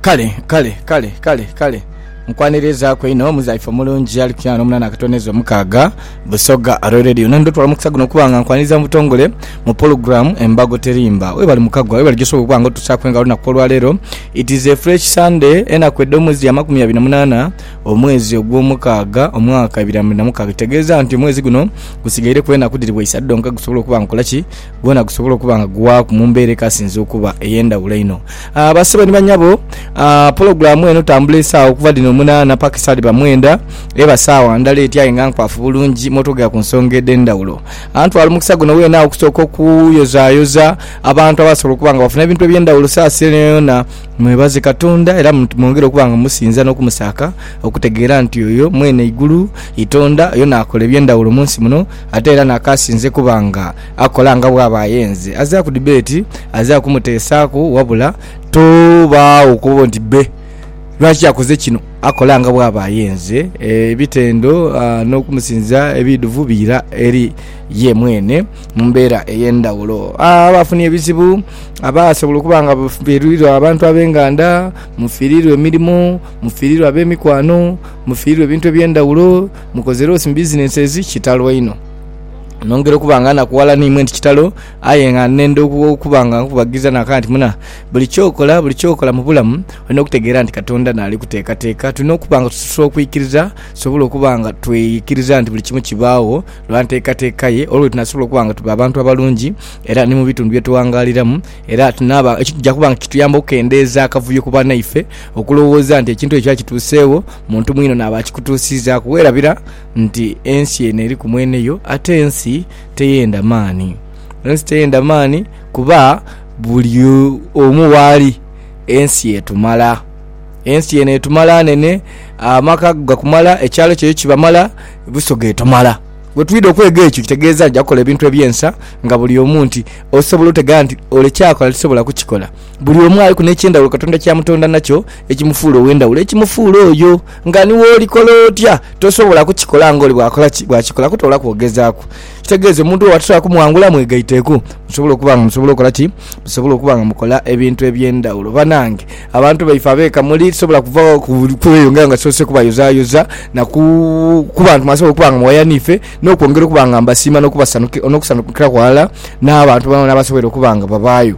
Kale, kale, kale, kale, kale. Nkwanirizaaku inho muzaife omulungi ali ku kyaana omunaana akatono ezo mukaaga, Busoga Royal Radio. Nandhi otwala omukisa guno okuba nga nkwaniriza mu butongole mu pologulaamu Embago Terimba. Webale mukagwa, webale gyosobola okuba nga otusaaku engalo olunaku olwaleero. It is a fresh Sunday, enaku edh'omwezi ya makumi abiri na munaana omwezi ogw'omukaaga omwaka ebiri na mwenda mukaaga. Ekitegeeza nti omwezi guno gusigaireku enaku dhiri bwa isatu dhonka gusobole okuba nga gukola ki? gwona gusobola okuba nga guwaaku mu mbeera ekasinze okuba ey'endhawulo einho. Ah, Basebo ni banyabo, ah, pulogulaamu eno tambula esaawa okuva dhino munaana paka esaa dhiba mwenda, eba saawa ndhala eti aye nga nkwafu bulungi mwotwogera ku nsonga edh'endhawulo. Ah, ntwala omukisa guno weenagho okusooka okuyozaayoza abantu abasobola okuba nga bafuna ebintu eby'endhawulo saasi eno yoona. Mwebaze Katonda era mwongere okuba nga musinza n'okumusaaka okutegeera nti oyo mwene eigulu, Itonda, yona akola eby'endhawulo mu nsi muno. Ate era n'akaasinze kuba nga akola nga bw'aba ayenze, azira ku dibeeti, azira kumuteesaaku, wabula tobaagho kuba oti bbe lwaki akoze kino, akola nga bw'aba ayenze. Ebitendo n'okumusinza ebiidhuvu biira eri ye mwene mu mbeera ey'endhaghulo. Abaafunye ebizibu, abaasobola okuba nga bafiirirwa abantu ab'enganda, mufiirirwa emirimo, mufiirirwa ab'emikwano, mufiirirwa ebintu eby'endhaghulo, Mukoze loss mu businesses kitalo einho. Nongera okuba nga nakuwala ni imwe nti kitalo aye nga nenda oku- okuba nga nkubagiza naka nti muna buli kyokola buli kyokola mu bulamu olina okutegeera nti Katonda naali kuteekateeka. Tulina okuba nga tusobola okwikiriza tusobole okuba nga twikiriza nti buli kimu kibaagho lwa nteekateeka ye olwo lwetunasobola okuba nga tuba abantu abalungi era ni mu bitundu bye tughangaaliramu era tunaaba ekituja kuba nga kituyamba okukendeeza akavuyo ku banaife okulowooza nti ekintu ekyo kituuseegho Muntu mwinho naaba akikutuusiizaaku, weerabira nti ensi eno eriku mwene yo, ate ensi teyenda maani. Ensi teyenda maani kuba buli omu waali ensi etumala. Ensi eno etumala nene, amaka go gakumala, ekyalo kyo yo kibamala, Busoga etumala. Bwe twidha okwega ekyo kitegeeza nti ja kukola ebintu eby'ensa nga buli omu nti osobola otegera nti ole kyakola tisobola kukikola. Buli omu aliku n'eky'endhaghulo Katonda ky'amutonda nakyo ekimufuula ow'endhaghulo, ekimufuula oyo. Nga ni woolikola otya, tosobola kukikola ng'oli bw'akola ki? Bw'akikola kutoolaku ogezaaku. Ekitegeeza omuntu oyo atasobola kumwangula, mwegaiteeku musobole okuba nga musobola okukola ki? Musobole okuba nga mukola ebintu eby'endhaghulo. Banange, abantu baife ab'eka muli tisobola kuva kweyongera nga sisoose kubayozaayoza na ku ku bantu mwasobola okuba nga muwaya n'ife n'okwongera okuba nga mbasiima n'okusanhukiraku ghalala n'abantu boonaboona abasoboire okuba nga babaayo.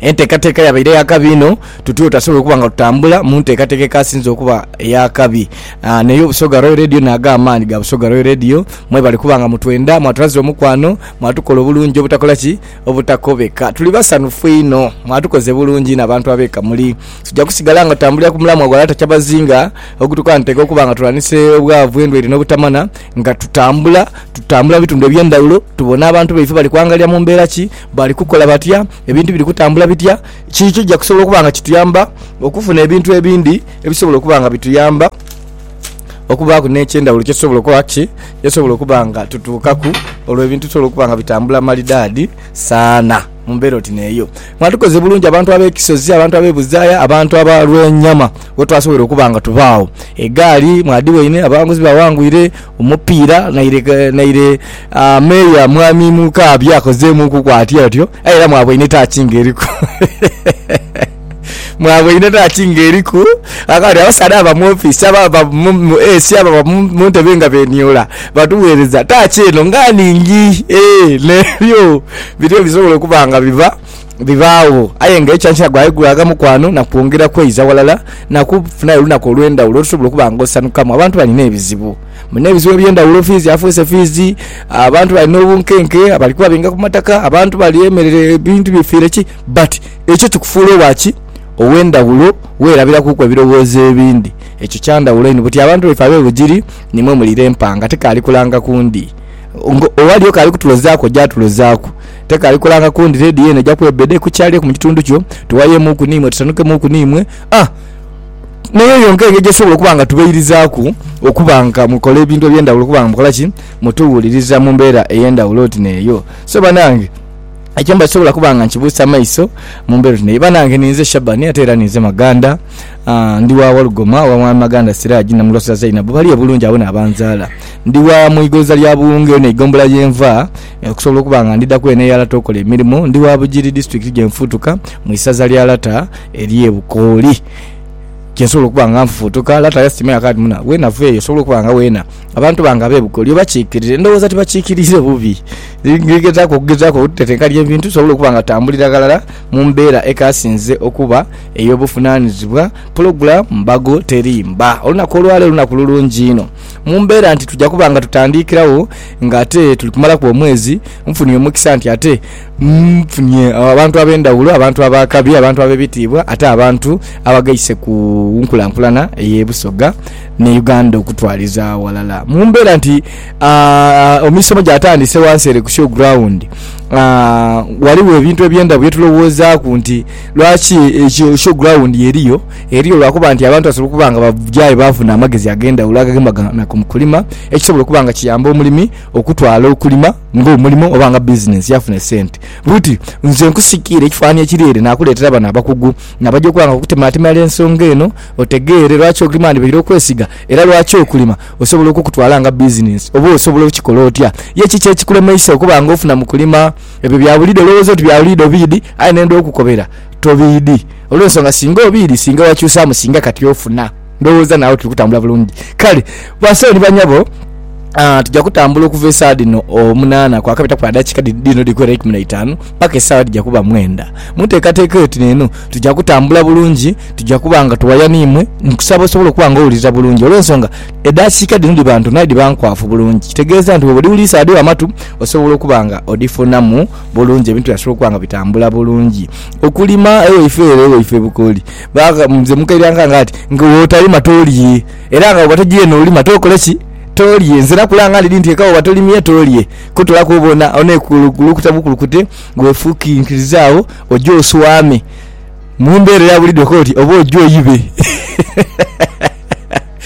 Enteekateeka yabaire ya kabi inho, tutuyo tasobola okuba nga tutambula mu nteekateeka ekasinze okuba ey'akabi. Ah, naye Obusoga Royal Radio naago amaani ga Busoga Royal Radio, mwebale kuba nga mutwenda, mwatulaze omukwano, mwatukola obulungi obutakola ki? Obutakobeka. Tuli basanhufu inho, mwatukoze bulungi inho abantu ab'e Kamuli. Tuja kusigala nga tutambulira ku mulamwa gwa Lata Kyabazinga ogutukantaika okuba nga tulwanise obwavu, endwaire n'obutamana nga tutambula, tutambula mu bitundu eby'endhaghulo, tubona abantu baife bali kwangalira mu mbeera ki? Bali kukola batya? Ebintu biri kutambula bitya? Kiki ekija kusobola okuba nga kituyamba okufuna ebintu ebindi ebisobola okuba nga bituyamba okubaaku n'eky'endhawulo kye tusobola okukola ki? Kye tusobola okuba nga tutuukaku olwo ebintu bisobole okuba nga bitambula malidaadi sana mu mbeera oti n'eyo. Mwandhikoze bulungi abantu ab'ekisozi, abantu ab'ebuzaaya, abantu aba Lwenyama We twasobola okuba nga tubaagho, egaali mwadhiwaine, abawanguzi bawangwire, omupiira naire naire Meeya Mwami Mukaabya akozeemuukuku atyo atyo. Aye era mwaboine taaki ng'eriku. Mwaboine taaki ng'eriku. Kaakati abasaadha ababa mu ofiisi, ababa mu mu AC, ababa mu mu ntebe nga beeniula batugheereza taaki eno nga nhingi. Eeh, n'ebyo birio bisobola okuba nga biva. bibaagho, aye nga ekyankya gwaigulaga mukwano na kwongera kweiza ghalala na kufunayo olunaku olw'endhawulo olusobola okuba nga osanhukamu. Abantu balina ebizibu, balina ebizibu eby'endhawulo, fiizi afuuse fiizi, abantu bali n'obunkenke, bali kuba benga ku mataka, abantu bali emerere, ebintu bifiire ki. But ekyo kikufuula owa ki? Ow'endhawulo, weerabirakuuku ebirowoozo ebindi. Ekyo kya ndhawulo inho. Buti abantu baife ab'e Bugiri nimwo muli Lempa nga tikaali kulanga ku ndi. Nga owaliyo k'ali kutulozaaku oja atulozaaku. Tekaali kulanga kundi redio eno eja kuba ebede ku kyalireku mu kitundu kyo. Tuwayemuuku n'imwe, tusanukemuuku n'imwe. A N'eyo yonka engeri gye tusobola okuba nga tubeirizaaku okuba nga mukola ebintu eby'endhawulo okuba nga mukola ki? Mutuwuliriza mu mbeera ey'endhawulo oti n'eyo. So banange, ekyo mba sisobola kuba nga nkibuusa maiso mu mbeera oti n'eyo. Banange, ninze Shabani ate era ninze Maganda. A Ndi wa Walugoma, owa Mwami Maganda Siraji na Mulosa Zainabu, bali e Bulungi agho n'abanzaala. Ndi wa mu igonza lya Buwunga, eno eigombola ye nva. Okusobola okuba nga ndidhaku eno ey'alata okola emirimo, ndi wa Bugiri disitulikiti gye nfuutuka mu isaza lya Lata ery'e Bukooli gye nsobola okuba nga nfuutuka. Lata yasiima yaakola ati, Muna, weenava eyo osobola okuba nga weena abantu bange ab'e Bukooli obakiikirire. Ndowooza tibakiikiriire bubi. Ndi gezaaku okugezaaku okutetenkanya ebintu nsobole okuba nga tambulira ghalala mu mbeera ekaasinze okuba ey'obuvunaanizibwa. Pulogulaamu mbago teri mba. Olunaku olwa leero lunaku lulungi inho. Mu mbeera nti tuja kuba nga tutandiikiragho nga ate tuli kumalaku omwezi, nfunye omukisa nti ate nfunye abantu ab'endhaghulo, abantu ab'akabi, abantu ab'ebitiibwa ate abantu abagaise ku nkulankulana ey'e Busoga ni Uganda okutwaliza aghalala. Mu mbeera nti emisomo gyatandise ghansi ere ku show ground, ghaligho ebintu eby'endaghulo bye tulowoozaaku nti lwaki show ground eriyo. eriyo lwa kuba nti abantu basobola okuba nga baja aye baafuna amagezi ag'endhawulo agagema gana ku kulima, ekisobola okuba nga kiyamba omulimi okutwala okulima ng'omulimo oba nga bizinensi yaafuna esente. Bw'oti, nze nkusikiire ekifanhanhi ekiri ere naakuleetera bano abakugu nabaja okuba nga bakutemaatemera ensonga eno otegeere lwaki okulima ghandibaire okwesiga era lwaki okulima osobola okukutwala nga bizinensi oba osobola okukikola otya ye kiki ekikulemeisa okuba nga ofuna mu kulima. Ebyo bya buliidho olowooza oti bya buliidho biidhi aye nenda okukobera. Tobiidhi. Olw'ensonga singa obiidhi, singa wakyusaamu, singa kati ofuna. Ndowooza naagho tuli kutambula bulungi. Kale, basawo ni banhabo, tuja kutambula okuva esaa dhino omunaana kwakabitaku adakiika dhino dhikwera eikumi na itaanu paka esaawa edhija kuba mwenda. Mu nteekateeka eyo tino eno, tuja kutambula bulungi, tuja kuba nga tuwaya n'imwe. Nkusaba osobole okuba nga owulirira bulungi, olw'ensonga edakiika dhino dhiba ntono aye dhiba nkwafu bulungi. Kitegeeza nti bwoba odhiwuliisa dhigho amatu, osobola okuba nga odhifunamu bulungi, ebintu byasobola okuba nga bitambula bulungi. Okulima ewaife ere ewaife Bukoli, nze mukaire ankange ati nga bwotalima tolye. Era nga bwoba togiire nolima tokole ki? Tolye. Nze era kulanga ndidhi nti eka bwoba tolimye tolye. Kutolaku oba ona, ona ekulukute bukulukute wefukinkirize agho oje oswame. Mu mbeera eya buliidho okoba oti oba oje oibe.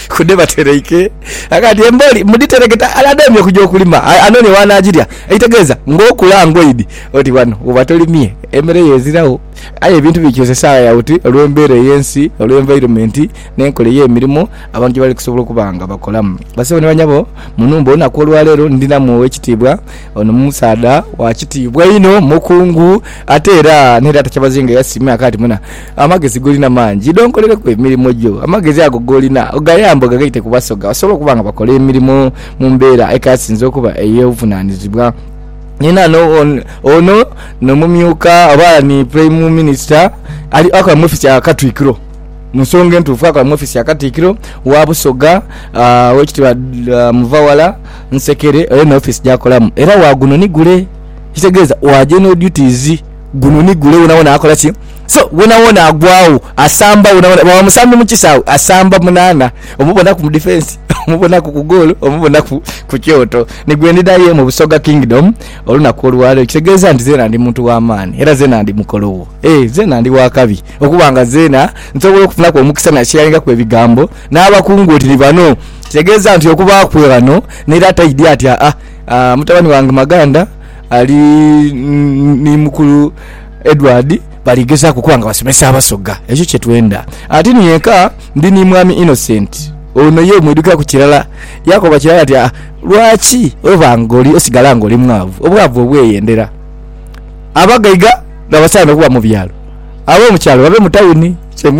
Ku dhe batereike ghaka nti embooli mudhitereketa ale adheemye okuja okulima anoonie w'anaagirya. Ekitegeeza ng'okula ngoidi oti ghano woba tolimye emere yo eziragho. Aye ebintu bikyusa esaagha ya buti olw'embeera ey'ensi, olw'environment n'enkola ey'emirimo abantu gye bali kusobola okuba nga bakolamu. Bassebo ni banyabo, mu nhumba olunaku olwaleero ndhinamu ow'ekitiibwa. Ono musaadha wa kitiibwa inho, mukungu ate era n'eraata Kyabazinga yasiima ghaka nti, Muna. Amagezi golina mangi idho onkolereku emirimo gyo. Amagezi ago golina ogayambe ogagaite ku basoga basobole okuba nga bakola emirimo mu mbeera ekasinze okuba ey'obuvunaanizibwa. Ni naano ono no mumyuka oba ni Purayimu Minisita ali akola mu ofiisi ya Katwikiro. Mu nsonga entuufu akola mu ofiisi ya Katikkiro wa Busoga, Oweekitiibwa Muvawala Nsekere oyo ni ofiisi gy'akolamu era wa guno ni gule. Ekitegeeza wa general duties, guno ni gule wonawona akola ki? So wonawona agwawo asamba wonawona bwaba musambi mukisawe asamba munana omubonaku mu defence omubonaku ku goal omubonaku ku kyoto nigwendida ye mu busoga kingdom olunaku olwalero ekitegeza nti zena ndi muntu wamani era zena ndi mukolowo eeh zena ndi wakabi okuba nga zena nsobola okufunaku omukisa nasharingaku ebigambo nabakungu oti ni bano kitegeza nti okuba kwe ghano nera taidya ati aah mutabani wange maganda ali ni mukulu Edward bali gezaaku okuba nga basomesa Abasoga, ekyo kye twenda. Ati ni eka ndi ni Mwami Innocent, ono ye mwidhukiraku kirala. Yaakoba kirala ati, Ah, lwaki oba ng'oli osigala ng'oli mwavu? Obwavu obweyendera. Abagaiga n'abasaana okuba mu byalo, ab'omu kyalo babe mu tawuni. Kye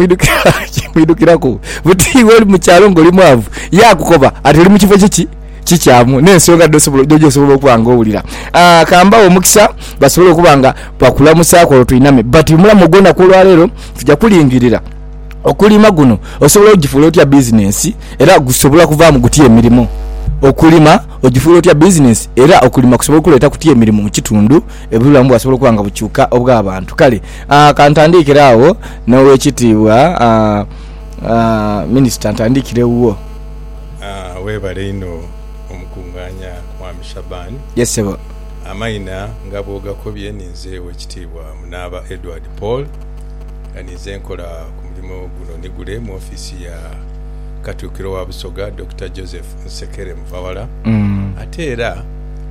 mwidhukiraku buti iwe oli mu kyalo ng'oli mwavu. Yaakukoba ati, Oli mu kifo kiki? kikyamu n'ensonga dh'osobola okuba nga owulira. Ka mbaghe omukisa basobole okuba nga bakulamusaaku olwo twiname. But mu mulamu ogw'onaku olwaleero tuja kulingirira okulima guno osobola ogifuula otya bizinensi era gusobola kuvaamu gutya emirimo. Okulima ogifuula otya bizinensi era okulima kusobola okuleeta kutya emirimo mu kitundu, obulamu bwasobola okuba nga bukyuka obw'abantu. Kale ka ntandiikire agho n'Owekitiibwa Minisita, ntandiikire wuwo. Webale inho omukungaanya Mwami Shaban. Yes sebo. Amaina nga bwogakobye ninze Owekitiibwa Munaaba Edward Paul nga ninze nkola ku mulimo guno ni gule mu offiisi ya Katuukiro wa Busoga Dokita Joseph Nsekere Muvawala ate era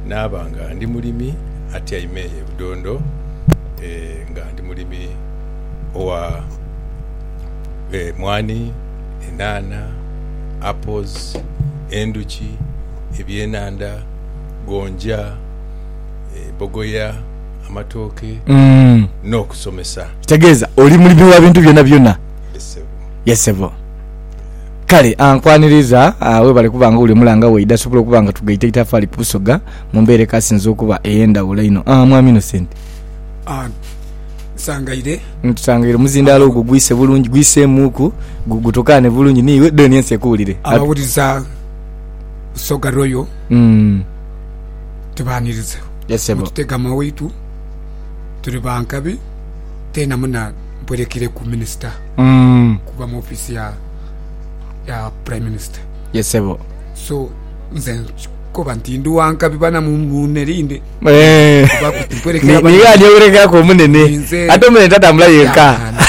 naaba nga ndi mulimi atyaime eyo e Budondo nga ndi mulimi owa e mwaani, enhanha, apples, endhuki, ebyenhandha, gonja, bogoya, amatooke n'okusomesa. Kitegeeza oli mulimi wa bintu byonabyona? Yes sebo. Kale ah, nkwaniriza ah, webale kuba nga oli omulanga waidha asobola okuba nga tugaita itafaali ku Busoga mu mbeera ekasinze okuba ey'endhawulo einho. Ah, Mwami Innocent. Ah. nsangaire. Nsangaire omuzindaalo ogwo gwise bulungi, gwiseemuuku, gutokaane bulungi n'iwe, then ensi ekuwulire. Abawuliza Busoga Royal mm. tubaaniriza yes, mututega mwa waitu tuli ba nkabi teena muna mpwerekere ku minisita mm. kuba mu ofisi ya, ya prime minister yes, so nze nkoba nti ndi wa nkabi bana munerinde Eh. Kuba kuti nkwerekera Ni- abana- niyo anyewerekaku omunene Ninze- ate omunene tatambula yenka Yaakana.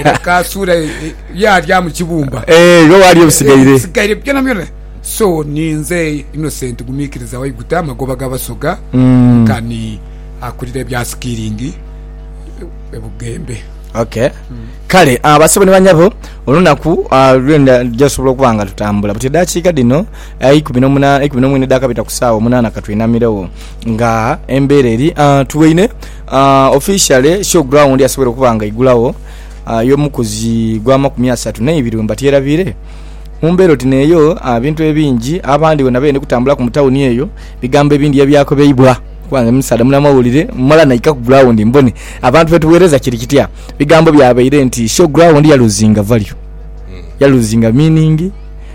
Era kasuula e- e- yaalya mu kibumba Eh, iwe waali ebisigaire sigaire byona byona so ninze innocent gumiikiriza waiguta amagoba g'abasoga Mm. nkani akulira ebya sikiringi ebugembe okay kale ah, basebo ni banyabo olunaku ah, lwenda jasobola okuba nga tutambula buti edakiika dhino Eikumi n'omunaana, eikumi n'omwine edhakabita ku saawa omunaana ka tweinamiregho nga embeera eri tuweine. Officially show ground yasoboire okuba nga eigulagho y'omukuzi gwa makumi asatu n'eibiri we mbatyerabiire. Mu mbeera oti n'eyo ebintu ebingi abandi bona beyende kutambulaku mu tawuni eyo bigambo ebindi ye byakobeibwa kuba nga musaadha munamawulire mala naika ku ground mbone abantu be tugheereza kiri kitya. Bigambo byabaire nti show ground ya loosinga value, ya loosinga meaning.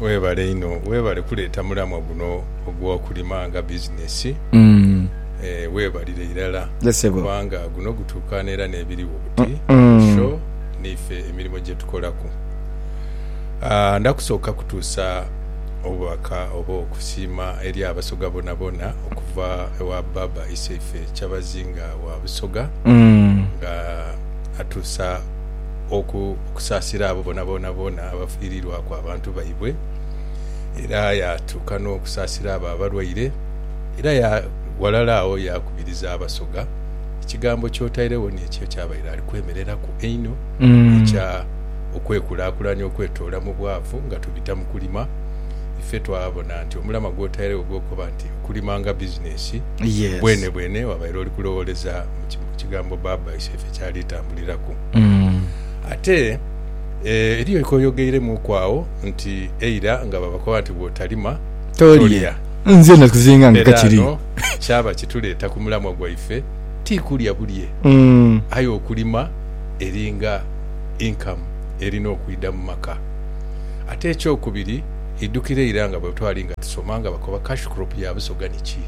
Webale inho webale kuleeta mulamwa guno ogwokulima nga business eeh webalire irala kubanga guno gutukaana era nebiriwo buti ku show niife emirimo gyetukolaku aah ndakusooka kutuusa obubaka oba okusiima eri abasoga bonabona okuva ewa Baaba Isaife Kyabazinga wa Busoga nga atuusa okusaasira abo boonaboona boona abafiiriirwaku abantu baibwe, era yaatuuka n'okusaasira abo abalwaire, era ya ghalala agho yaakubiriza Abasoga, ekigambo ky'otairegho n'ekyo ky'abaire ali kwemereraku einho ekya okwekulaakulanya okwetoola mu bwavu nga tubita mu kulima. Ife twabona nti omulamwa gw'otairegho ogw'okukoba nti okulima nga bizinesi, bwenebwene wabaire oli kulowooleza mu kigambo baabaisaife ky'ali tambuliraku. Ate eriyo kye oyogeiremuuku agho nti eira nga babakoba nti bw'otalima tolya, era ghano kyaba kituleeta ku mulamwa gwaife, ti kulya bulye, aye okulima eringa inkamu erina okwidha mu maka. Ate ekyokubiri, idhukire eira nga bwe twali nga tusoma nga bakoba cash crop ya busoga niki,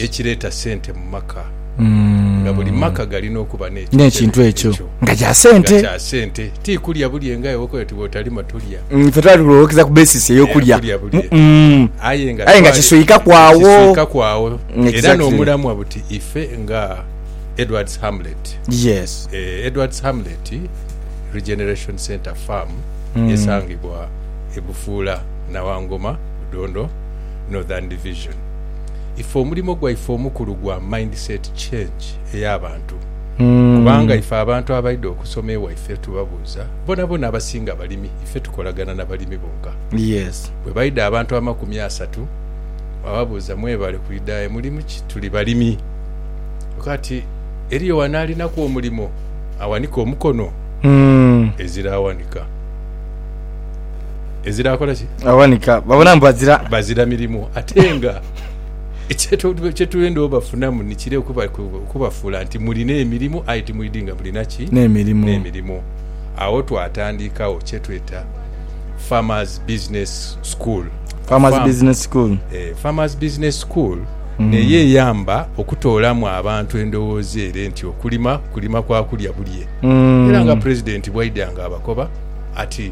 ekireeta sente mu maka. nga buli maka galina okuba n'ekintu ekyo nga kya sente. Ti kulya bulye ng'aye bw'okoba oti bw'otalima tolya. Ife twali tulowookereza ku basis ey'okulya bulye. Aye nga kiswikaku agho. Era n'omulamwa buti ife nga Edward's Hamlet. Edward's Hamlet Regeneration Centre Farm esangibwa e Bufuula Nawangoma, Budondo Northern Division. ife omulimo gwaife omukulu gwa mindset change ey'abantu kubanga ife abantu abaidha okusoma ewaife tubabuuza bonabona abasinga balimi ife tukolagana na balimi bonka. Bwe baidha abantu amakumi asatu wababuuza mwebale kwidhayo mulimu ki tuli balimi kati eriyo wano alinaku omulimo awanike omukono? Ezira awanika. Ezira kola ki? Awanika. Babona mbu bazira. Bazira mirimu. Ate nga kyetwenda obafunamu nikire okubafuula nti mulina emirimu aye timwidi nga mulina ki? N'emirimu. N'emirimu. Agho twatandikawo kyetweta Farmers Business School. Farmers Business School. Eh, Farmers Business School. Mm. Neyo eyamba okutoolamu abantu endowooza ere nti okulima, kulima kwa kulya bulye. Mm. Era nga President bwaidanga abakoba ati,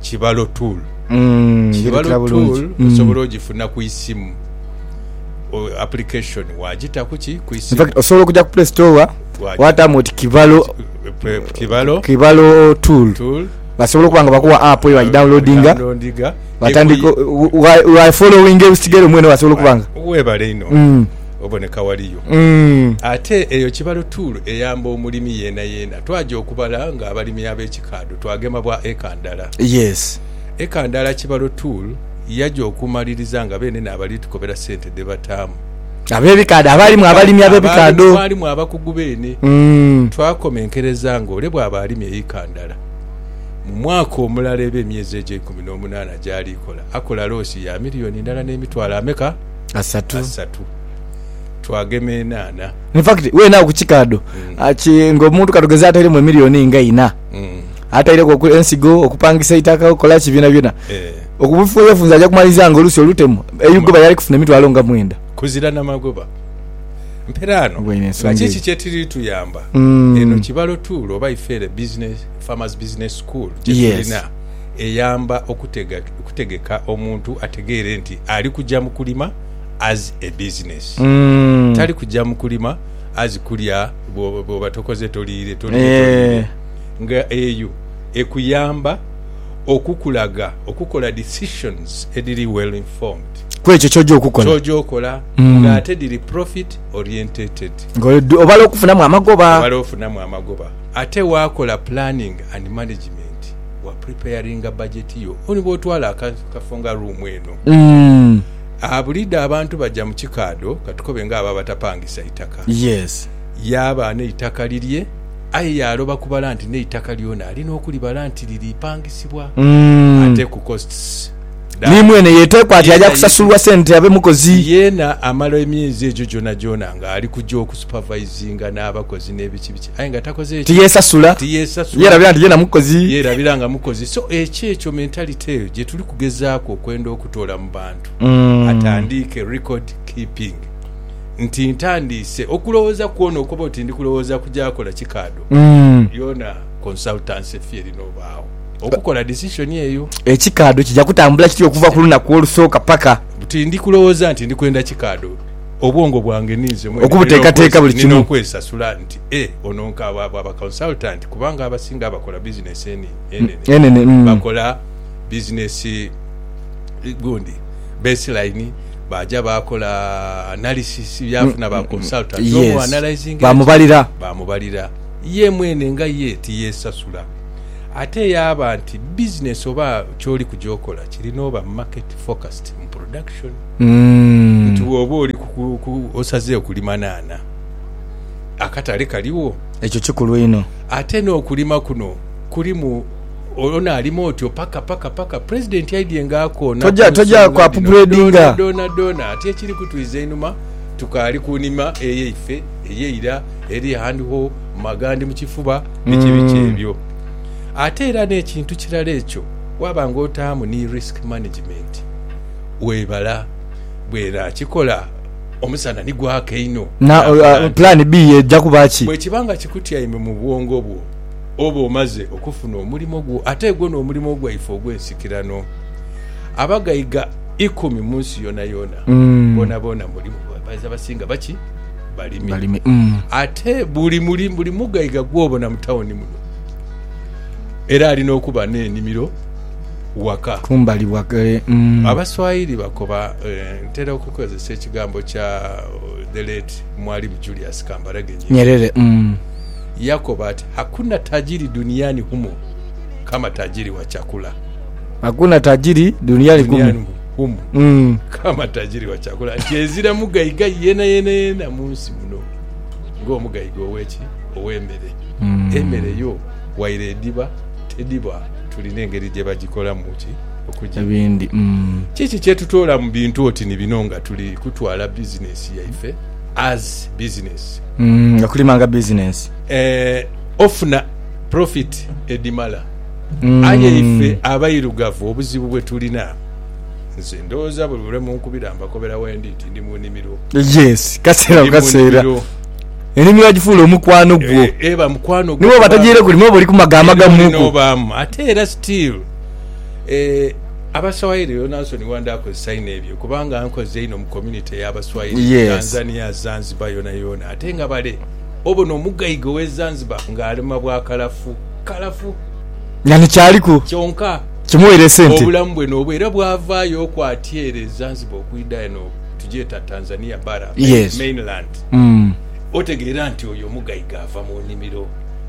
Kibalo tool. Kibalo tool osobola ogifuna ku isimu. Application wagitaku ki ku isimu. Infact osobola okuja ku play store watamu oti kibalo kibalo kibalo tool. Tool. Basobola okuba nga bakuwa app eyo wagidownloadinga batandika wa following ebisigere mwene basobola okuba nga. Webale inho. Mm. Oboneka waliyo. Mm. Ate eyo kibalo tool eyamba omulimi yena yena. Twaja okubala nga abalimi abekikaadho. Twagema bwa eka ndala. Yes. Eka ndala kibalo tool yaja okumaliriza nga benene abali tukobera sente dhe bataamu. Abebikaadho abaalimu abalimi abebikaadho. Mwalimu abakugu beene. Twakomenkereza nga ole bwaba alimye eka ndala mu mwaka omulala eba emyezi egyo eikumi n'omunaana gyali kola akola loosi ya milioni ndala n'emitwalo ameka? Asatu. Asatu. Twagema enaana. In fact weena awo ku kikaadho nga omuntu katugeze ataireemu emilioni nga ina. ataireku oku- ensigo okupangisa eitaka okola ki byonabyona Eh, okubufunzafunza aja kumaliriza nga olusi olutemu eyugoba yali kufuna emitwalo nga mwenda kuzira na magoba mperaano Obwo ine nga nsonga kiki eyo. kyetiri tuyamba Mm. eno kibalo tuulo oba ifeere business farmers business school Yes. gyetulina eyamba okutega, okutegeka omuntu ategeere nti ali kujja mu kulima as a business Mm. tali kujja mu kulima as kulya bwoba bwoba tokoze toliire toliire toliire Eeh. nga eyo ekuyamba okukulaga okukola decisions edhiri well informed Kwekyo kyoja okukola. kyoja okola nga ate dhiri profit orientated. Nga oli dhu obala okufunamu amagoba. Obala ofunamu amagoba ate wakola planning and management wa preparinga budget yo. Oti bwotwala aka akafo nga room eno Umm. Aa buliidho abantu baja mu kikaadho katukobe nga abo abatapangisa itaka. Yes. Yaaba n'eitaka lirye aye yaaloba kubala nti n'eitaka lyona alina okulibala nti liri pangisibwa Umm. ate ku costs dha. Ni mwene yeteekwa ati aja Yeena yesi. kusasulwa sente abe mukozi. Yeena amala emyezi egyo gyonagyona nga ali kuja oku supervisinga n'abakozi n'ebiki biki aye nga takoze ki? Tiyesasula. Tiyesasula. Yerabira nti yeena mukozi. Yerabira nga mukozi. So ekyo ekyo mentality eyo gyetuli kugezaaku okwenda oku. kutoola mu bantu atandiike record keeping nti ntandiise okulowooza ku ono okuba oti ndi kulowooza ku gy'akola kikaado yona consultancy fee erina obaagho okukola decision eyo. Ekikaado kija kutambula kitya okuva ku lunaku olusooka paka. Buti ndi kulowooza nti ndi kwenda kikaado obwongo bwange ninze mwene Okubuteekateeka buli kimu. nina okwesasula nti e ono nk'abo abo aba consultant kubanga abasinga abakola business eni enene Enene, mm. bakola business gundi baseline baja bakola analysis byafuna ba consultant yes. omu analyzing bamubalira bamubalira ye mwene nga ye tiyesasula ate yaba nti business oba kyoli kuja okola kirina oba market focused mu production mm. nti woba oli osaze okulima naana akatale kaliwo ekyo kikulu ino ate n'okulima kuno kulimu Ono alima otyo paka paka paka president aidye nga akoona ku nsonga dhino dhoona dhoona dhoona ati ekiri kutwiza einhuma tukaali ku nhima eyaife eyeira eri hand ho mu magandhi mu kifuba biki biki ebyo. Ate era n'ekintu kirala ekyo waaba nga otaamu ni risk management webala bwe naakikola omusana ni gwaaka einho nakola ntya? Bwe kiba nga kikutyaime mu bwongo bwo. oba omaze okufuna omulimo gwo ate gwo n'omulimo gwaife ogw'ensikirano. Abagaiga ikumi mu nsi yoonayoona boonaboona mulimu, baidha basinga baki? Balimi. Ate buli buli mugaiga gw'obona mu tawuni muno era alina okuba n'enimiro waka. Abaswahili bakoba, ntera okukozesa ekigambo kya the late Mwalimu Julius Kambarage Nyerere. yakoba ati, Hakuna tajiri duniani humu kama tajiri wa chakula. Hakuna tajiri duniani kumu. Duniani humu Mm. kama tajiri wa chakula. Nti ezira mugaiga yena yena yena mu nsi muno ng'omugaiga ow'eki? Ow'emere. Emere yo waire ediba tediba, tulina engeri gye bagikolamu ki? Okugirya. Ebindi. Mm. Kiki kye tutoola mu bintu oti ni bino nga tuli kutwala bizinesi yaife as bizinesi? Okulima nga bizinensi. Eeh, ofuna profit edhimala. Aye ife abairugavu obuzibu bwetulina, nze ndhowooza buli lwe munkubira mbakobera wendi nti ndi mu nimiro. Yes, kaseera ku kaseera enimiro wagifuula omukwano gwo. Eba mukwano gwo. Ni bwoba togiire kulima oba oli ku maga amagamuku. Ate era still eeh. Abaswayiri rero Nansoni wandha akozesa inho ebyo kubanga ankoze inho mu community ya baswayiri mu Tanzania, Zanzibar yona yona ate nga bale obona omugaiga owe Zanzibar nga alima bwa kalafu kalafu. Nga ni kyaliku. Kyonka. Kimuweire sente. Obulamu bwe nobwo era bwavayo oku ati ere e Zanzibar okwida eno tugyeta Tanzania bara, mainland, otegeera nti oyo omugaiga ava mu nimiro.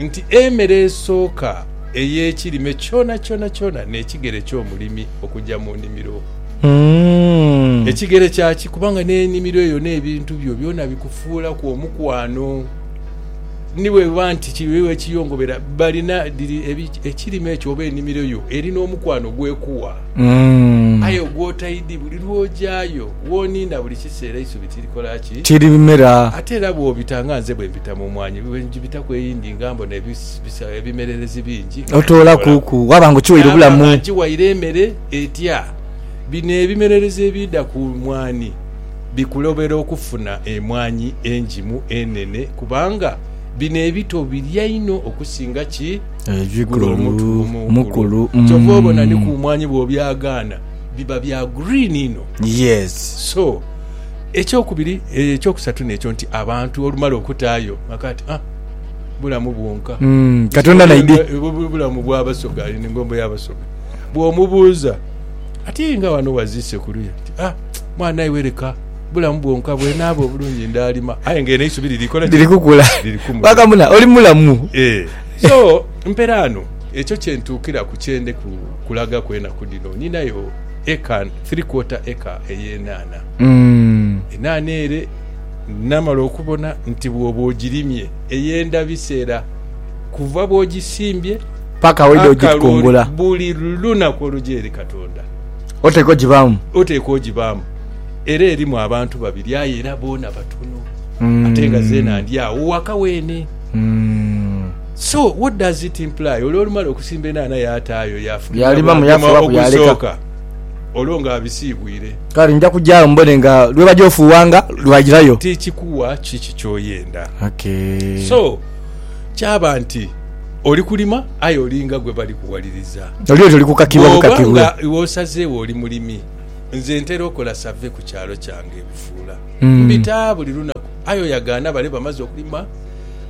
nti emere esooka ey'ekirime kyonakyona n'ekigere ky'omulimi okuja mu nimiro. Ekigere kyaki? Kubanga n'enimiro eyo n'ebintu byo byona bikufuulaku omukwano. Ni bwebiba nti kiiwe ekiyongobera, balina dhiri ekirime ekyo oba enimiro yo eri n'omukwano gw'ekuwa. Aye ogwotaidhi, buli lw'ojayo, w'oniina buli kiseera eisubi. kirikola ki? Kiribimera. Ate era bw'obita nga nze bwe mbita mu mwanyi, bwe ngibitaku eyindi nga mbona ebisa, ebimererezi bingi, nga nkigholaku. Otoolaku, waba nga okighaire Naaba obulamu. nga nkighaire emere etya? Bino ebimererezi ebiidha ku mwanhi bikulobera okufuna emwanhi engimu, enene, kubanga bino ebito birya inho okusinga ki? Gule Ebikulu. omutu omukulu. Mukulu. Kyova obona ni ku Mm. mwanhi bw'obyagaana, biba bya green inho. Yes. So. Ekyokubiri, ekyokusatu n'ekyo nti abantu olumala okutaayo maka ati ah, bulamu bwonka. Mm, Katonda naidhi. Bulamu bwa Basoga, eno engombo ya Basoga. Bw'omubuuza ati nga wano waziise ku luya ati ah, mwana iwe leka bulamu bwonka bwenaaba obulungi ndaalima. Aye nga eno eisubi liri kola ki? Liri kukula. Liri kumula. Wakamuna, oli mulamu. Ee. So, mperaano, ekyo kyentuukiraku kyende ku, kulagaku enaku dhino. Ninayo eka. Three quarter acre ey'enhaanha. Enhaanha ere namala okubona nti bwoba ogirimye eyenda biseera kuva bwogisimbye Paka weda ogitukungula. akaloli buli lunaku oluja eri Katonda Oteekwa ogibaamu. oteekwa ogibaamu. Era erimu abantu babiri aye era boona batono ate nga zeena ndi agho waka weene. So what does it imply? Ole olumala okusimba enhaanha yataayo yafulumya Yaalimamu, bwagema yaafulaku, yaaleka. ogusooka. olwo ng'abisiibwire. Kale nja kuja agho mbone nga lwe baja ofuughanga lwairayo. Ti kikuwa kiki ky'oyenda. Okay. So, kyaba nti oli kulima aye olinga gwe bali kuwaliriza. Oli oti oli kukakibwa bukakibwe. Bw'oba nga iwe osazeewo oli mulimi, nze ntera okola save ku kyalo kyange e Bufuula. Mbita buli lunaku aye oyagaana bale bamaze okulima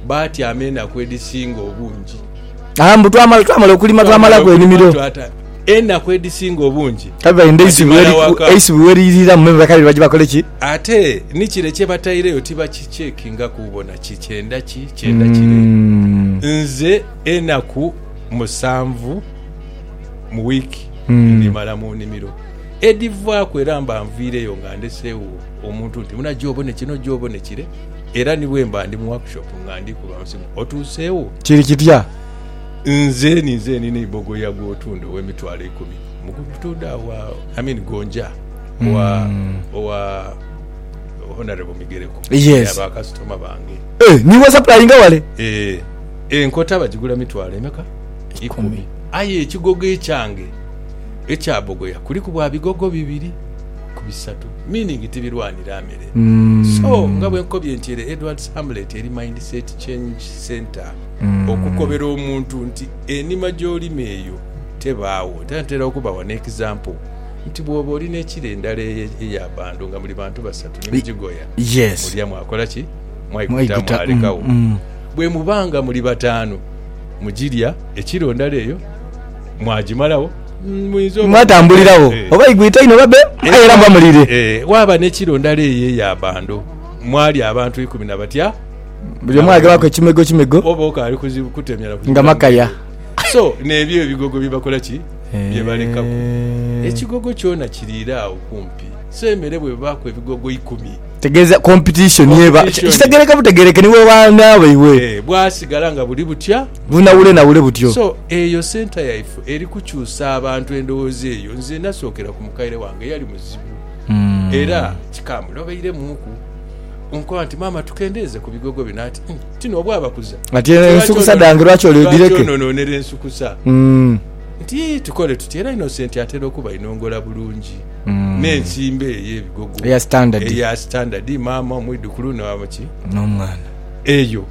baatyama enaku edhisinga obungi. Twamala okulima twamalaku enimiro. Enaku edhisinga obungi badhimala waka. Ate ni kire kye bataireyo tibakikyekingaku bona ki kyenda ki kyenda kire. Nze enaku musanvu mu wiiki ndhimala mu nimiro. Edhivaaku era mba nviireyo nga ndhesegho omuntu nti muna gye obone kino gye obone kire. Era ni bwemba ndi mu workshop nga ndi kuba nsimu, otuuseewo? Kiri kitya? Nze ninze nina eibogoya gw'otunda ow'emitwalo eikumi. Mukutunda wa? I mean Gonja wa, owa Honourable Migereko. Yes. Abo bakasitoma bange. Eh, niiwe osapulainga wale? Eh, enkota bagigula mitwalo emeka? Ikumi. Aye ekigogo ekyange ekya bogoya kuliku bwa bigogo bibiri ku bisatu, meaning tibirwanira mere. So nga bwe nkobye nti ere Edward's Hamlet eri Mindset Change Centre okukobera omuntu nti enima gy'olima eyo tebaawo. Era ntera okubawa n'ekizampo nti bw'oba oli n'ekira endala eyo eya bbando nga muli bantu basatu ni mugigoya, mulya mwakola ki? Mwaiguta mwalekagho. Bwe muba nga muli bataanu, mugirya ekiro ndala eyo mwagimalagho. Mwatambuliragho oba igwita inho babe, aye era muba mulire. Waaba n'ekiro ndala eyo eya bando, mwali abantu ikumi na batya. Buli omu aghebaaku ekimego kimego. Oba okaali kuzibu kutemyana kuzibu. Nga makaya. So, n'ebyo ebigogo bye bakola ki? Bye balekaku. Ekigogo kyona kiriire agho kumpi. So, emere bw'ebaaku ebigogo ikumi. Kitegeeza competition eba. Competition. Kitegeereka butegeereke ni w'obaana baibwe. Bwasigala nga buli butya. Bunawule nawule butyo. So eyo centre yaife eri kukyusa abantu endowooza eyo nze nasookera ku mukaire wange yali muzibu era kikambula obairemuuku onkoba nti maama tukendeeze ku bigogo bino ati hmm ti n'obu abakuza Ati eno ensukusa dhange lwaki oli lwaki dhireke? ononoonera ensukusa nti tukole tutya era Innocent atera okuba ainongola bulungi n'ensimba eyo ebigogo Eya standard. eya standard maama omwidhukulu na ki N'omwana. eyo.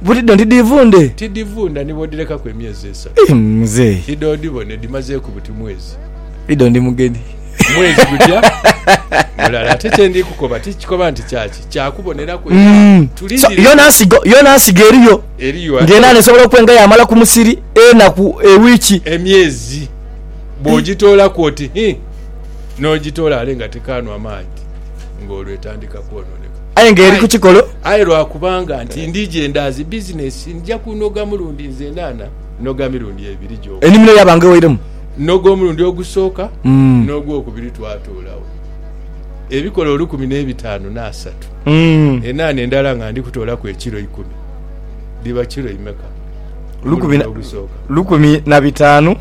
Butidho nti dhivundhe. Tidhivundha ni bw'odhirekaku emyezi esatu. Ih muzei. Idho odhibone dhimazeeku buti mwezi. Idho ndi mugeni. Mwezi gutya mulala. Ate kye ndi kukoba ti kikoba nti kya ki, kya kuboneraku era tulindire. Yona nsigo, yona nsigo eriyo. Eriyo ate. Ng'enaana esobola okuba enga yaamala ku musiri enaku, ewiiki. Emyezi bw'ogitoolaku oti hii, n'ogitoola ale nga tekaanwa maadhi, ng'olwo etandika kwononeka. Aye nga eri ku kikolo. Aye lwa kubanga nti ndi gyendaazi bizinesi, nja kunoga mulundi nzenana, noga mirundi ebiri gyoka. Enimiro yaaba nga ewairemu. Noga omulundi ogusooka, n'ogwokubiri twatuulagho ebikolo olukumi n'ebitaanu n'asatu. Enhaana endala nga ndi kutoolaku ekiro ikumi, dhiba kiro imeka? Omulundi ogusooka. Lukumi na bitaanu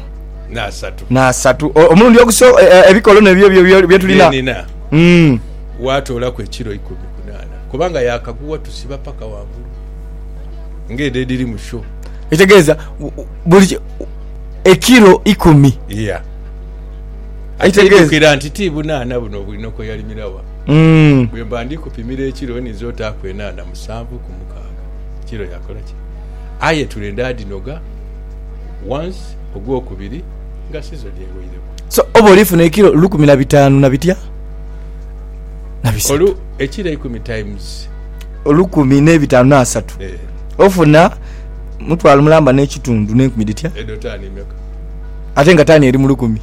n'asatu. Omulundi ogusooka, ebikolo n'ebyo bye tulina. Waatoolaku ekilo ikumi ku naana kubanga yaakagugha tusiba paka ghangulu ng'edho edhiri mu sho. Ekitegeeza buli ekilo ikumi. Iya. Aite idhukira nti ti bunaana buno Bwinoko yalimira wa. Mm. Bwe mba ndi kupimira ekilo ninza otaaku enaana musanvu ku mukaaga. Kilo yakola ki? Aye etule ndaadhinoga once ogwokubiri nga sizoni egheireku. So oba olifuna ekilo lukumi na bitaanu na bitya? na bisatu. Ekiro eikumi times. Olukumi ne bitanu na asatu. Eh. Ofuna mutwalo mulamba ne kitundu ne nkumi dhitya? Edho tani meka? Ate nga tani eri mu lukumi.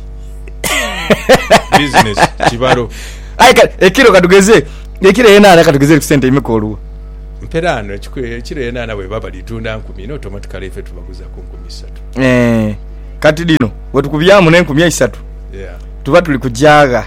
Business kibalo. Aye kale ekiro katugeze ekiro yenana katugeze ku sente imeka oluwa? Mperano ekiro yenana bweba balitunda nkumi no automatically ife tubaguza ku nkumi isatu. Eh. Kati dhino wetukubyamu ne nkumi eisatu. Yeah. Tuba tuli kujagha.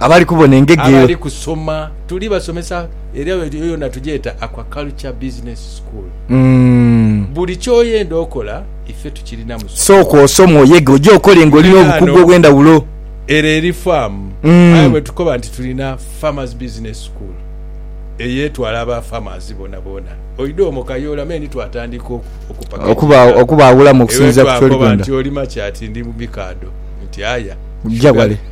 Abali kubona engege eyo. Abali kusoma. Tuli basomesa era eyo yona tugyeta Aquaculture Business School. Buli kyoyenda okola ife tukirina mu sukulu. Sooka osome oyege oje okole nga olina obukugu obwendawulo. Ere eri faamu aye bwetukoba nti tulina Farmers Business School eyetwala aba farmers bonaboona. Oidha omwo kayoola me ni twatandika okupackaging. Okubaawulamu okusinziira ku kyoli kwenda. Eyo twakoba nti olima ki ati ndi mubikaadho nti aya. Gya ghale.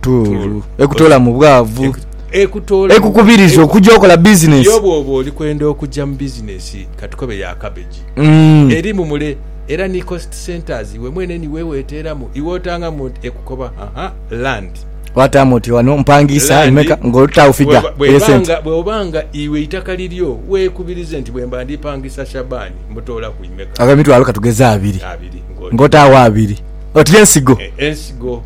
Tuulu. Ekutoola mu bwavu. Ekutoola mu. Ekukubiriza okugya okola bizinesi. Yo bw'oba oli kwenda okugya mu bizinesi ka tukobe ya kabeji, erimu mule era ni cost centres iwe mwene ni weeweteeramu iwe otangamu nti ekukoba ha land. Wataamu oti wano mpangiisa emeka ng'otaawo figa ey'esente. Bw'oba nga iwe eitaka liryo weekubirize nti bwemba ndi pangisa Shaban mutoola ku imeka. Ag'emitwalo ka tugeze abiri. Abiri. Ng'otaawo abiri. Oti ensigo. Ensigo.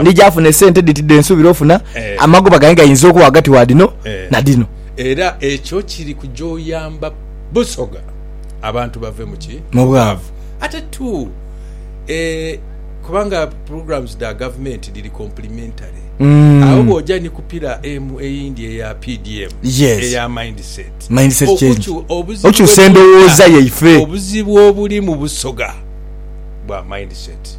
ndi gyafuna esente dhiti dhensuubira ofuna, eh. amagoba gange gayinza okuba ghagati wa dhino eh. na dhino. Era ekyo kiri kuja oyamba Busoga abantu bave muki mu bwavu ate tu eh, kubanga programs dha gavumenti dhiri complementary mm. awo bwoja ni kupira emu eyindi eya pdm yes. eya mindset mindset change okyusa endowooza yaife obuzibu obuli mu busoga bwa mindset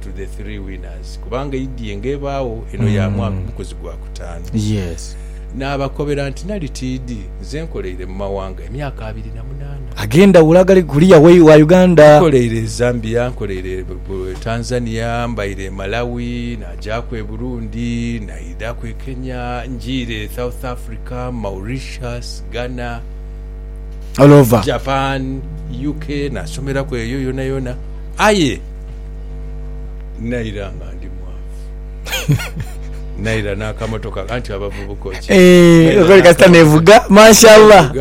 to the three winners kubanga eidhie nga ebaagho eno ya mwaka mukozi gwa kutaanu. Yes. Naabakobera nti nali tiidhi nze nkoleire mu mawanga emyaka abiri na munaana. Ag'endhawulo agali kuliya wa Uganda. Nkoleire e Zambia, nkoleire e Tanzania, mbaire e Malawi, naagyaku e Burundi, naidhaku e Kenya, njiire e South Africa, Mauritius, Ghana, All over. Japan, UK naasomeraku eyo yonayona. Aye. naira nga ndi naira n'akamotoka anti abavubuka okiri kasita nevuga mashallah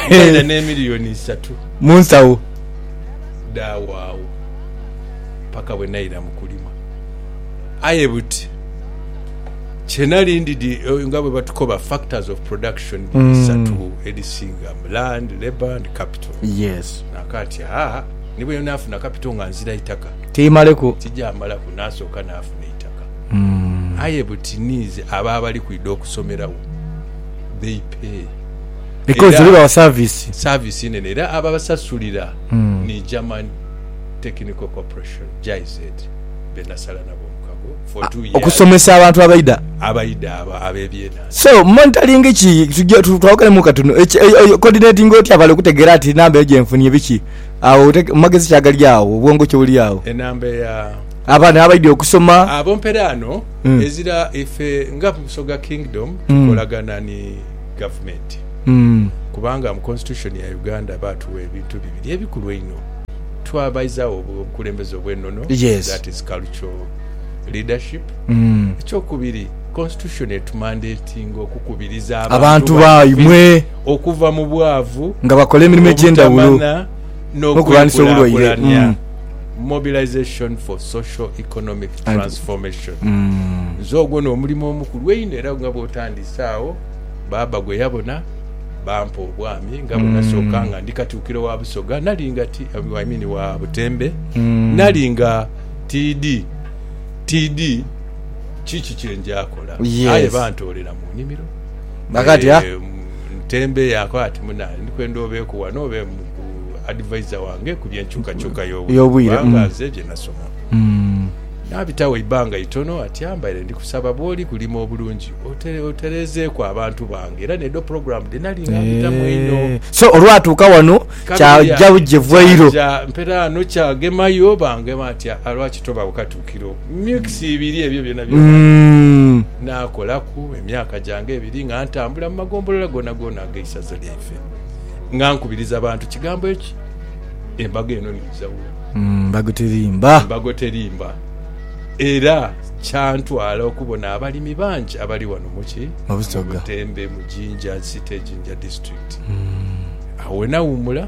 naira n'emiliyoni isatu mu nsawo daawo awo paka bwe naira mu kulima aye buti kyenali ndidi eh, nga bwe batukoba factors of production isatu mm. edisinga land labour and capital yes nakati aa ni bwe naafuna kapito nga nzira itaka, tiimaleku. Tijaamalaku naasooka naafuna eitaka. Aye buti niize abo abali kwidha okusomeragho they pay Because era bawa service. service inene era ababasasulira ni German Technical Corporation, GIZ, be nasala nabo omukago for two years Okusomesa abantu abaidha. abaidha abo ab'ebyenansi. So monitoring ki? Tugya, twawoganemu katunu. Eki, e, e, coordinatinga otya bale okutegeera ati namba eyo gye nfunye biki? Agho ote- mu magezi ki agali agho, obwongo ki obuli agho? enamba eya Abaana abaidhi okusoma. abo mperaano Mm. ezira ife nga Busoga Kingdom Mm. tukolagana ni gavumenti Mm. kubanga mu constitution ya Uganda baatuwa ebintu bibiri ebikulu einho twabaizagho obu- obukulembeze obw'enono Yes. that is cultural leadership Mm. ekyokubiri constitution etumandetinga okukubiriza Abantu baimwe. okuva mu bwavu, nga bakola emirimo egy'endhawulo obutamana n'okulwanisa obulwaire. n'okwekulaakulanya, Mm. Mobilisation for Social Economic And- Transformation. Mm. Nze ogwo n'omulimo omukulu einho era nga bw'otandise agho, baaba gwe yabona bampa obwami nga bwe nasooka nga ndi Katikkiro wa Busoga, nali nga ti, I mean wa Butembe, Mm. nali nga tiidhi, tiidhi kiki kye njaakola. Yes. Aye bantoolera mu nnimiro. Bakatya. Ntembeeyaku ati, Muna, ndi kwenda obeeku wano obe advisor wange ku by'enkyukakyuka y'obwire, Y'obwire, kubanga mm. nze bye nasoma. Naabitawo eibbanga itono ati, Ambaire ndikusaba bw'oli kulima obulungi otere, otereezeeku abantu bange era n'edho program dhe nali nga mbitamu einho. Eeh, so olwatuuka wano Kabiri kyagya ati, bugye vwairo. Kyagya mperaano kyagemayo, bangema ati, Aa, lwaki tobagho katu? kiro weeks ibiri ebyo byona byona nakolaku emyaka gyange ebiri nga ntambula mu magombolola gonagona ageisaza lyaife nga nkubiriza bantu kigambo eki embago eno niija wo embago terimba embago terimba era kyantwala okubona abalimi bangi abali wano muki mubusoga Butembe mu jinja city jinja district awo wenawumula.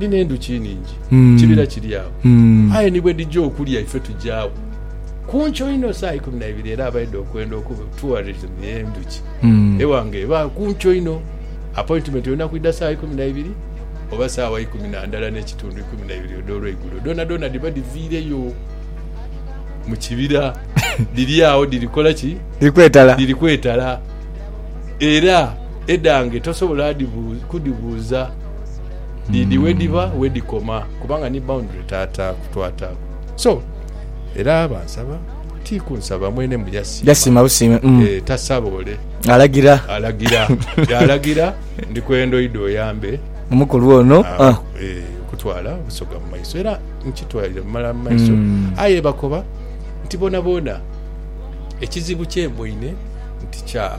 ni n'endhuki nhingi mu kibira kiri agho. Aye ni bwe dhija okulya ife tuja agho ku nkyo inho saa ikumi na ibiri era abaidha okwenda okuba tourism y'endhuki eghanga eba ku nkyo inho. Appointment olina kwidha saa ikumi na ibiri oba saawa ikumi na ndala n'ekitundu, ikumi na ibiri edh'olweigulo. Dhoonadhoona dhiba dhiviireyo mu kibira dhiri agho dhiri kola ki? Dhiri kwetala. Era edhange tosobola kudhibuuza. Dhidhi mm. wedhiba wedhikoma kubanga ni boundary taata kutwataku so era bansaba ti kunsaba mwene mbu yasiima yasiima busiime mm. e, tasaba ole alagira alagira yalagira ndikwendoidha oyambe omukulu ono uh, ah. e, eh, kutwala obusoga mu maiso era nkitwalire mumala mu maiso mm. aye bakoba nti bonaboona ekizibu kyemboine nti kya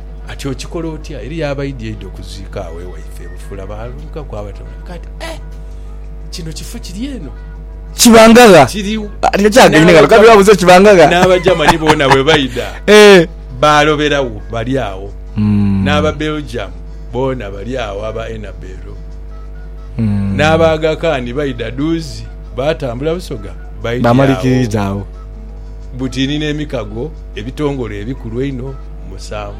Ati okikola otya? Eriyo abaidya idya okuziika agho ewaife ebufula baalunkaku abatono. Nka ati, Eh! Kino kifo kiri eno? Kibangagha. Kiri. Ati nga kyagenhe ghano kale wabuuza ekibangagha. N'Abajamani boona bwe baidha baaloberawo bali agho. N'Ababelgium boona bali agho aba Enabel. N'Abaagakani baidha duuzi baatambula busoga baidya agho. Bamalikiiriza agho. Butini n'emikago ebitongole ebikulu einho. musanvu.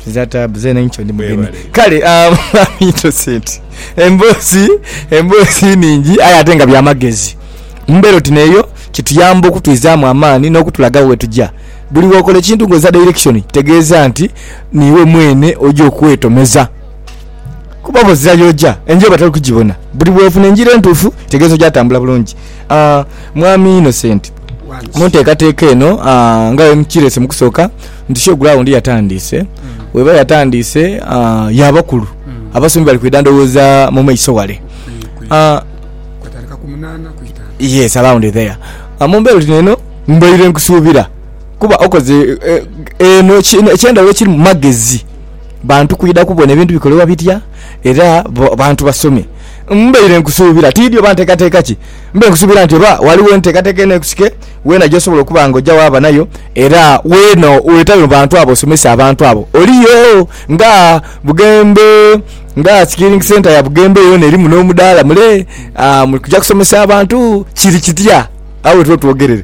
Za taabu zeena inho ndi mugenyi. Mwebale inho. Kale aa Mwami Innocent emboozi emboozi nhingi aye ate nga bya magezi. Mu mbeera oti n'eyo kituyamba okutwizaamu amaani n'okutulaga ghe tuja. Buli w'okola ekintu ng'oza direction tegeeza nti niiwe mwene oja okwetomeza kuba bw'ozira y'oja engira oba toli kugibona. Buli bw'ofuna engira entuufu kitegeeza oja tambula bulungi. Aah Mwami Innocent, mu nteekateeka eno nga bwe mukireese mu kusooka nti show ground yatandiise, bweba yatandiise ya bakulu abasomi bali kwidha ndhowooza mu maiso wale. Yes around there. Mu mbeera oti n'eno mbaire nkusuubira kuba okoze eno eky'endhawulo ekirimu magezi bantu kwidha kubona ebintu bikolebwa bitya era bantu basome. Mbaire nkusuubira, tiidhi oba nteekateeka ki, mbaire nkusuubira nti oba ghaligho enteekateeka enheekusike weena gy'osobola okuba nga oja waaba nayo era weena weetabe mu bantu abo osomese abantu abo. Oliyo nga Bugembe, nga Skilling Centre ya Bugembe yoona erimu n'omudaala mule muli kuja kusomesa abantu kiri kitya? Agho wetuba twogerere.